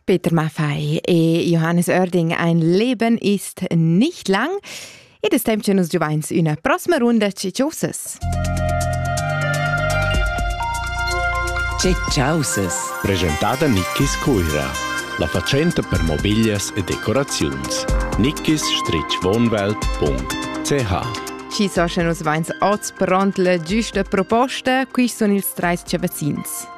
Peter Maffei e Johannes Oerding, ein Leben ist nicht lang. Ed es temp che nus giuvains üna prossima runda Ciciosas. Ciciosas. Presentada Nickis Cuira. La fatschenta per mobiglias e decoraziuns. nickis-wohnwelt.ch Ci so sche nus vains oz pront la giusta proposta, qui sun ils treis cavazzins.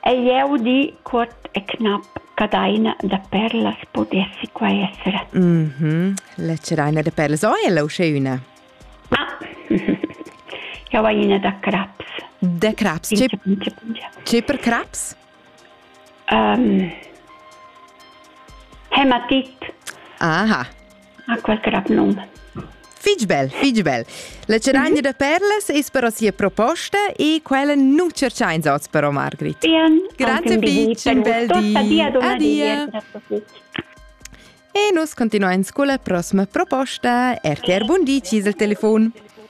Hai jeu di cuort e cnap ch'Adaina da Perlas pudessi quai esser. Lecidaina da Perlas, o ella uschè üna? Ah, jau hai ina da craps. Da craps? C'è, Pingia, pingia, pingia. c'è per craps? Um, Hematit. Aha, Ha quel crap num. Fitg bel, fitg bel. La ceraglia da perlas es però sia proposta e quella nu tscherchains oz però, Margrit. Bien, Grazie Peach, un bel di. Adia. E nus continuains con la prossima proposta. RTR Bundi, ci il telefon.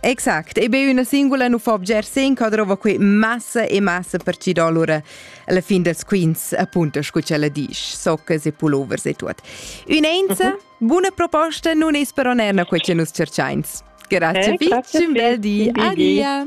Exact, e be üna singula nu fa bger sen ca drova que massa e massa per ci do allura la fin dels quints, appunto, scu ch'ella disch, soccas e pulovers e tuot. Ün'enza uh -huh. buna proposta nun es però neir na que cha nus cerchains. Grazie, eh, grazie vi, un bel di, adia!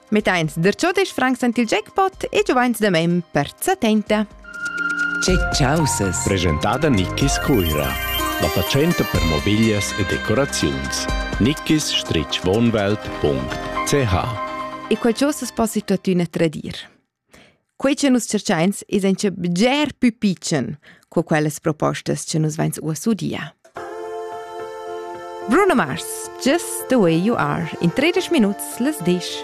Mettains der ciò des Franks ant il jackpot e giovains da mem per setenta. Che chausas! Presentada Nickis Cuira. La fatschenta per mobiglias e decoraziuns. nickis-wohnwelt.ch E quel chausas possi tuottüna tradir. Quei che nus tschercheins es auncha bger pü pitschen co quellas propostas che nus vains uoss udia. Bruno Mars, Just the way you are, in 30 minuts las disch.